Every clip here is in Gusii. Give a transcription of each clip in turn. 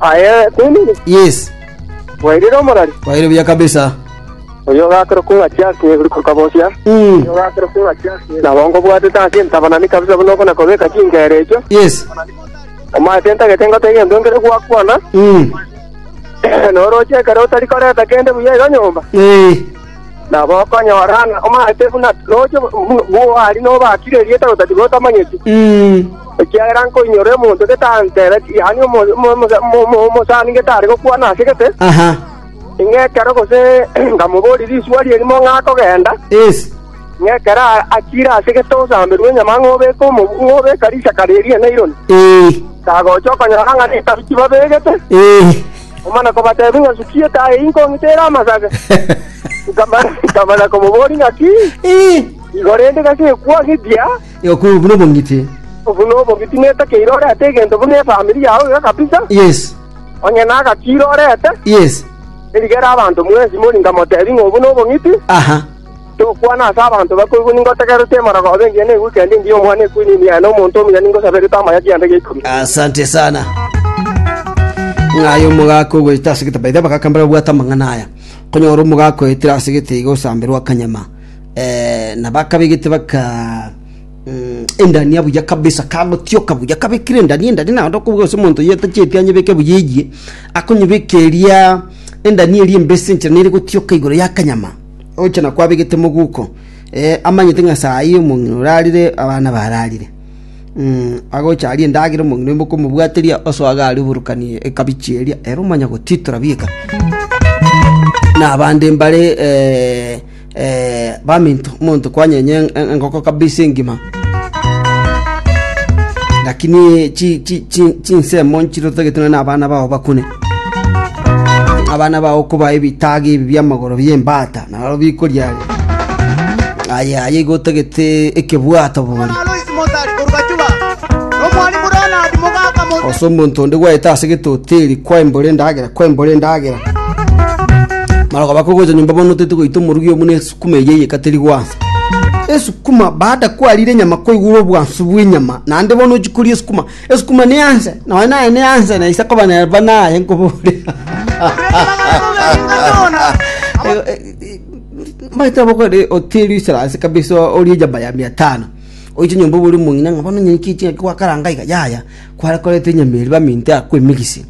Aye David, Yes, bwairire omorari. kwaire buya kabisa. Oyo ogakera kung'atia ase egori kokabosia. Mm. Nabo nkobwatete ase entabanani kabisa buna okona kobeka chingera echo. Yes. Omate ntagete ngote egento nkere gwakwana. Mm. Noroche ekero otari koreta kende buya iga nyomba. Eh. Nabo okonyora ng'a omanyete buna nocha bw'oaria nobakire erieta gose tiga otamanyeti, ekiagera nkoinyora omonto gete antereti, yaani omosani gete are gokwana ase gete, ng'a ekero gose ngamoboria risuba ri'erimo ng'a akogenda, ng'a ekero achire ase gete osamberwe enyama ng'a obeke omoboko ng'a obeka risaka ri'enaironi, tagocha okonyora ng'a netabu tibabegete. Omana kobatebia ng'a, Sukia etaaya eyio nkong'ite ere amasage. Nkamana, nkamana komoboria ng'aki, Igo rende gaki gekwa gechia? Okwo buna obong'iti. Obu nobong'iti netakeire orete egento buna efamiri yao iga kabisa. Yes. Onye nagakire orete, Yes. erigere abanto mwensi mori nkamotebia ng'a obu nobong'iti. Aha. Tokwana ase abanto bakoigwa, ningotegererete emorogo, obe engiya neigweke aria engiya omwana ekwine ime yaye, na omonto omuya ningosaberete amaya kianda gia ikomi. Asante sana. Ng'aye omogaka ogoeta ase gete. By the way, abagaka mbare babwate amang'ana aya. Konyora omogaka oetire ase gete iga osamberwa akanyama. Eh, na bakabegete baka mm, endania buya kabisa kagotioka buya kabekire endania endania naende okobuga ase omonto oyo atacheti anyebeke buya eyie akonyebeka eria endania eria embese enchera nere gotioka igoro ya akanyama oche na kwabegete moguko, eh, amanyete ng'a saa eyio omong'ina orarire, abana bararire. Mm, agocha aria endagera omong'ina oimoka omobwateria osoe iga aria oborokani ekabichi eria, ere omanya gotitora bieka. Na abande mbare eh, eh, baminto, omonto kwanyenya en- en- engoko kabisa engima, lakini chi- chi- chi- chinsemo nchire otagete nonya na abana bao bakune. Abana bao koba ebitaga ebi bi'amagoro bi'embata, naro bikoriaria. Aye, aye igo otagete ekebwato bori. Alois Mozart Gorbachewa n'omwalimu Ronald Mugaka Mozart Ose omonto onde gwaete ase getoteri kwaimbora endagera, kwaimbora endagera. Mara okaba kogocha nyomba bono otete goita omorugi oo buna esukuma eye eyekateri gwansa. Esukuma baada kwarire enyama kwaigura obwansu bw'enyama, naende bono ochikoria esukuma Esukuma ne anse, naye naye ne anse, na ise akoba nere buna aye nkobore. Maete abokore oteri iserase kabisa orie jaba ya mia tano. Oiche nyomba obori mong'ina ng'a bono nyenye ki chingaki gwakaranga iga yaya kware koreta enyama eri baminte akwemegise.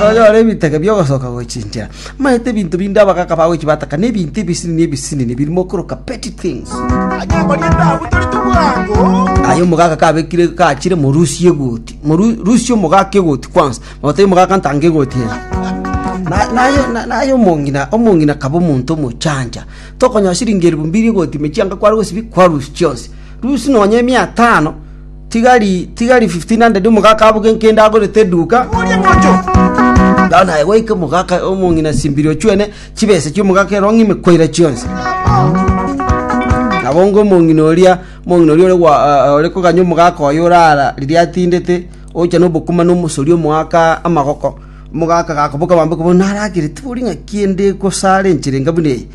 Nonyore ebitege biogosoka gochinchera. Maete ebinto binde abagaka bagochi bataka na ebinto ebisinini ebisinini biri mokoroka petty things. Aye omogaka kabekire kachire morusie egoti. Moru- Rusia omogaka egoti kwanza. Ote omogaka ntanga egoti eye. Na- naye na- naye omong'ina omong'ina kaba omonto omochancha. Tokonyaa siringi elfu mbiri egoti mechianga kware gosibia kwarusia chionsi. Rusia nonye mia tano. Tigari tigari 1500 omogaka aboge nkende agorete eduka. Nao naye goika omogaka omong'ina simbiri ochwene chibesa chi'omogaka ero ng'ime koira chionsi. Nabo onga omong'ina oria omong'ina oria ore gwa- ah, ore koganya omogaka oye orara riria atindete, ocha nobokima na omosori omoaka amagoko. Omogaka gakoboka bambe koba naragere tibori ng'a kiende gosara enchera enga buna eye.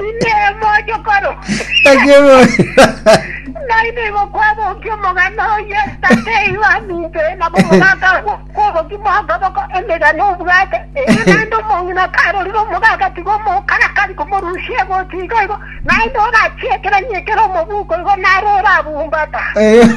Inee, mochokoro? Akebora, Nainwe igo kwabokia omogano oye, tata oino aminto oye, nabo omogaka oye kwabokia mokoboko emegano obwate, erio naende omong'ina karorire omogaka tiga omokarakari komorusia egochi igo igo, naende ogachia ekeranyi ekere omobuko igo naro orabumbata. Erio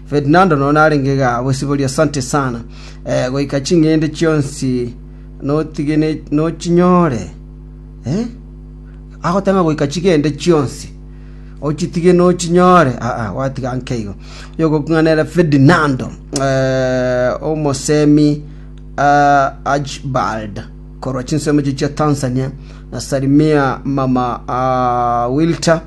Ferdinando nonya narenge iga bwesiborio asante sana eh, goika ching'ende chionsi notige ne- nochinyore eh? agotema goika chigende chionsi ochitige nochinyore aa gwatiga nkeigo yogokung'anera Ferdinando eh, omosemi ah, Archibald korwa chinsemo echi chia Tanzania na Salimia mama ah, Wilter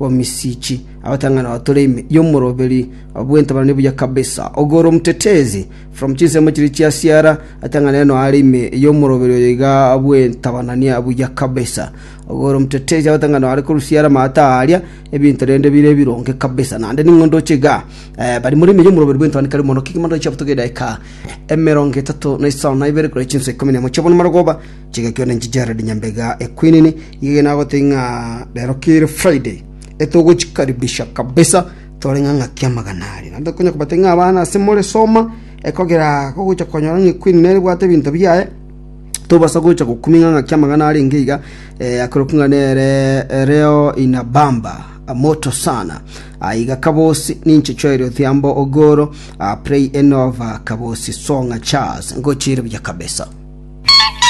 Omisiichi, abatang'ani ao tore ime y'omoroberi obw'ente baranie buya kabisa. Ogoro omotetezi, from chinsemo chiria chiasiara, atang'ane ere noare ime y'omoroberi oyo iga bw'ente bananie buya kabisa. Ogoro omotetezi, abatang'ani ao are korusia ere amaato aaria ebinto rende bire ebironge kabisa. Naende ning'o ndoche iga? Eh, bari more ime y'omoroberi bw'ente bane kare mono. Kegima ndoche abotoke edaika emerongo etato na isano na ibere korwa chinsa ikomi na emo chi'obono marogoba, Chigakio nenche Jared Nyambega Equinini, ng'ige nagotebie ng'a rero kere Friday etogochikaribisha kabisa tore ng'a ng'aki amagana aria. Naende tokonya kobatebia ng'a abana ase more soma ekogera gogocha konyora ng'a Equinini nere ebwate ebinto biaye tobasa gocha gokumia ng'a ng'aki amagana arenge iga eh, akerokwa ng'a nere eh, reo inabamba ah, moto sana Ah, iga kabosi ninche Joel Odhiambo Ogoro ah, play enova kabosi songa chas ngochire buya kabisa